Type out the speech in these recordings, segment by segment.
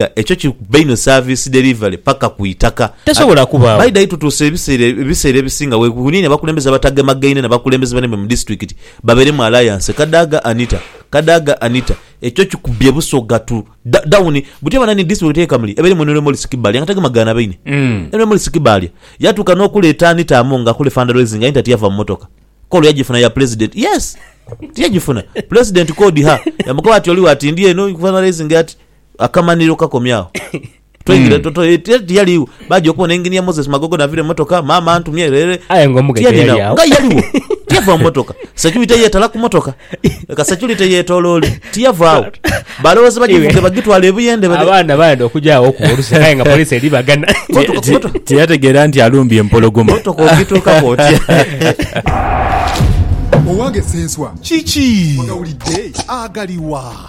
nga ekyo kiri kubba inho service delivery paka ku itaka. Tesobola kubaawo. By the way tutuuse ebiseera ebiseera ebisinga we weniini abakulembeze abatagemageine na bakulembeze banaibwe mu disitulikiti babeeremu alliance. Kadaga Anita Kadaga Anita Ekyo kikubbye Busoga tu da down buti bananni disitulikiti ye Kamuli ebeeremu Henry Morris Kibaalya nga tagemagaana baine. Henry Morris Kibaalya yatuuka n'okuleeta Anita Among akole fundraising Anita tiyava mu motoka call yagifuna ya pulezidenti yes tiyagifuna pulezidenti called her yamukoba ati oligho ati ndi eno fundraising ati Akamanhiro kakomye agho. Tweingira hmm. toto eh, tiyaligho. Baja okubona engineer Moses Magogo navira emotoka, mama antumye rere. Aye ngo mugaga yali agho. Nga yaligho. Tiyava motoka. Security yetala ku motoka. Ka security yetololi. Tiyava agho. Balowoza bajivuge bagitwala ebuyende bale. Abana bayenda okuja agho ku oluse kaye nga police eri bagana. Tiyategera nti alumbye empologoma. Motoka okituka koti. Owange senswa. Kiki. Wagawulidde agaliwa.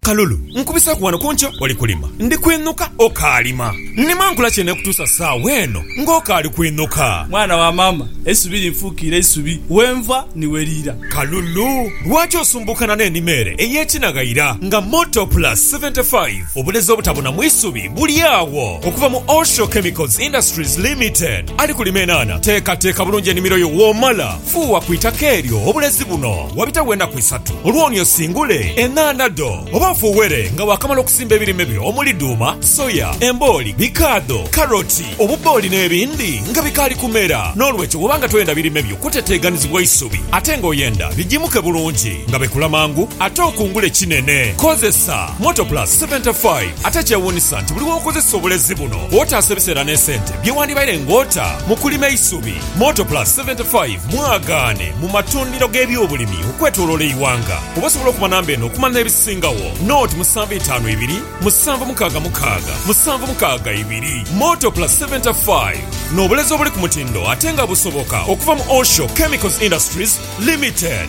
Kalulu, nkubiseeku wano ku ntyo oli kulima. Ndi kwinuka okaalima. Nnima nkola kyene okutuusa saawa eno ng'okaali kwinuka. Mwana wa maama, eisubi linfuukiire isubi, wenva ni we liira. Kalulu, lwaki osumbuukana n'enima ere ey'ekinaghaira nga Motor Plus 75? Obulezi obutabuna mu isubi buli agho. Okuva mu Osho Chemicals Industries Limited, ali kulima enhaanha. Teekateeka bulungi enimiro yo w'omala. Fuuwa ku itaka eryo obulezi buno wabitagho enaku isatu. Olwooni osingule enhaanha dho oba ofuuwere nga waakamala okusimba ebirime byo omuli dhuuma, soya, embooli, bikaadho, karoti, obubbooli n'ebindi nga bikaali kumera. N'olwekyo bw'oba nga toyenda birime byo kuteteeganizibwa isubi ate ng'oyenda bijimuke bulungi nga bikula mangu ate okungule kinene, kozesa Motoplus seventy five. Ate ekyewuunisa nti buli w'okozesa obulezi buno otaasa ebiseera n'esente bye wandibaire ng'ota mu kulima eisubi. Motoplus 75 mwagaane mu matundhiro g'ebyobulimi okwetoloola eighanga. Oba osobola okuba namba eno okumala n'ebisingawo, naught musanvu itaanu ibiri, musanvu mukaaga mukaaga, musanvu mukaaga ibiri. Motoplus 75, n'obulezi obuli ku mutindo ate nga busoboka okuva mu Osho Chemicals Industries Limited.